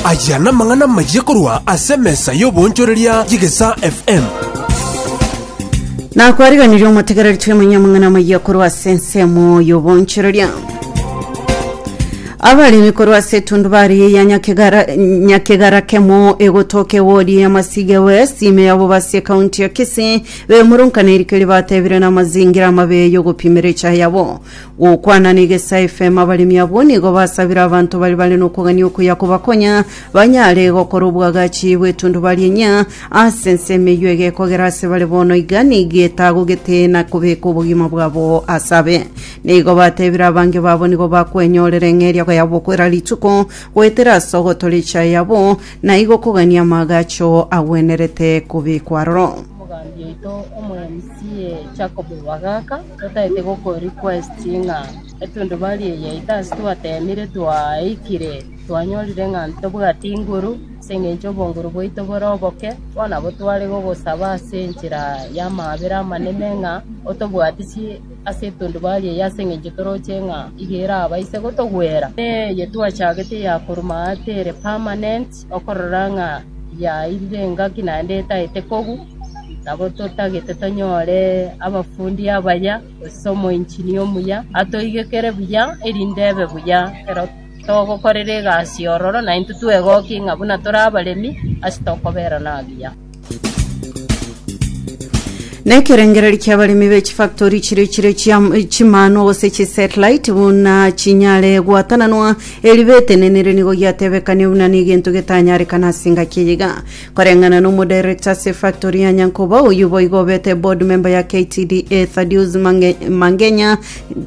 Aya namang'ana amayia korwa ase emesa y'oboonchoreria y'Egesaa FM. nakwariganirie omotegereri twemanya amang'ana amayia korwa ase ensemo y'oboonchoreria abaremi korwa ase etundubari ya Nyakigara- nyakigara kemo egotoka ewodi ya masige west ime ya bobasi ekaunti ya kisii bemoronkana erike ribatebire na amazingira amabe y'ogopimera echae yabo Gokwana negesa efemo abaremi abwo nigo basabire abanto baria bare nokogania okuya kobakonya banyare gokora obwagachi bw'etundubari enyia ase ense emeyio egekogera ase bare bono iga nigo etagogete na kobeka obogima bwabo ase abe. Nigo batebire abange babo nigo bakwenyorera eng'eria yabo okwera rituko goetera ase ogotora echae yabo na igo kogania amaagacho agwenerete kobekwa aroro. Omogambi oito omoyeni. Asie Jacob bagaka, totaete gokorequest ng'a etundubari eye yaito ase twateemire twaikire twanyorire ng'a ntobwati nguru, ase engencho obonguru bwaito bore oboke, bono abwo tware gogosaba ase enchera y'amabera amanene ng'a otobwatisie ase etundubari eye ase engencho toroche ng'a iga erabaise gotogwera. Eye twachagete ya korwa aa tere permanent. Okorora ng'a yairire engaki naende etaete kogu, nabo totagete tonyore abafundi abaya, gose omoinchinia omuya atoigekere buya, erinde ebe buya ekero togokorera egasi ororo, naintwe twegokie ng'a buna tore abaremi, ase tokoberana agiya. nekerengererio kiabaremi bechifactori chiria chiria chia- chimanwa gose chisatellite buna chinyare gwatananwa eribe etenenere nigo giatebekania buna negento getanyarekana ase engaki eye iga koreng'ana na omodirector ase efactori ya nyankoba oyio boigo obete board member ya ktda thadius Mange- mangenya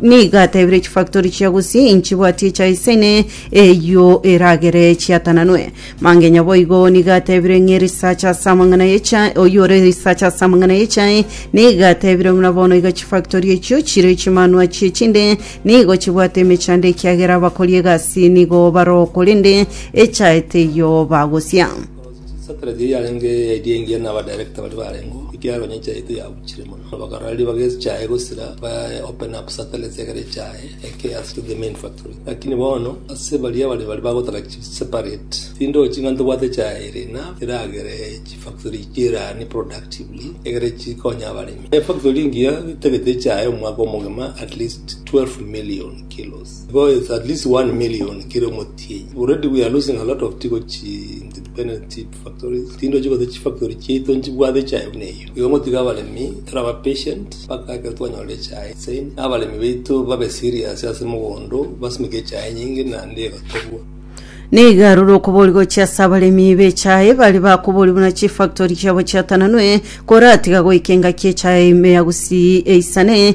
nigo atebire chifactori chia gusii inchibwati echaisaine eyio eragere chiatananwe Mangenya boigo nigo atebire ng'a erisacha ase amang'ana y'echa oyio ore erisacha ase amang'ana y'echae nigo atebire ng'a bono iga chifactory echio chire chimanwa chie chinde nigo chibwate emechando ekiagera abakori egasi nigo baroo korende echae teiyo bagosia. Satellite eyio yarenge yaeria engiya na aba director baria barengeo ekiagera onye echae ito yabuchire mono bakarora ribaga echae gosira ba open up satellites egere echae eke ase to the main factory. Lakini bono ase baria bare bare bagotaka chiseparate, tindochi ng'a ntobwate echae ere enough eragere chifactory chirane productively egere chikonya abaremi. Efactory engiya etagete echae omwaka omogima at least 12 million kilos. Igo it's at least 1 million kera omotienyi. Already we are losing a lot of tigo chi independent Tindochia gose chifactori chiaito nchibwate echae buna eyio. Igo ngotiga abaremi tore aba patient mpaka ekero twanyora echae inse na abaremi baito babe serious ase mogondo basimeke echae enyinge naende egotobwa. Nigo aroro okobori gochia ase abaremi b'echae baria bakobori buna chifactori chiabo chiatananwe, koratiga goika engaki echae ime ya gusii eisane,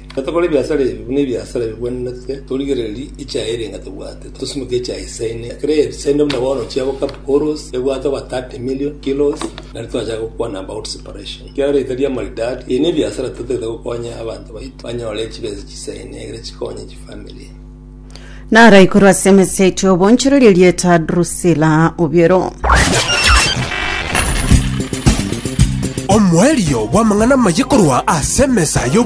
Gatokore ebiasara ebi buna ebiasara bigwenerete, torigererie echiaye ere ng'a tebwate, tosimoke echiaye isaine, ekero yasainire buna bono chia gokapu koros, ebwate over 30 million kilos, nari twachaka gokwana about separation. Ekiagera eri tari amaridadi, eri nebiasara totagete gokonya abanto baito banyore chibesa chisaine ekero chikonye chifamiri. Narai korwa ase emeseti obonchoreria erieta Drusila Obiero. Omoerio bw'amang'ana amaye korwa ase emesa y'obo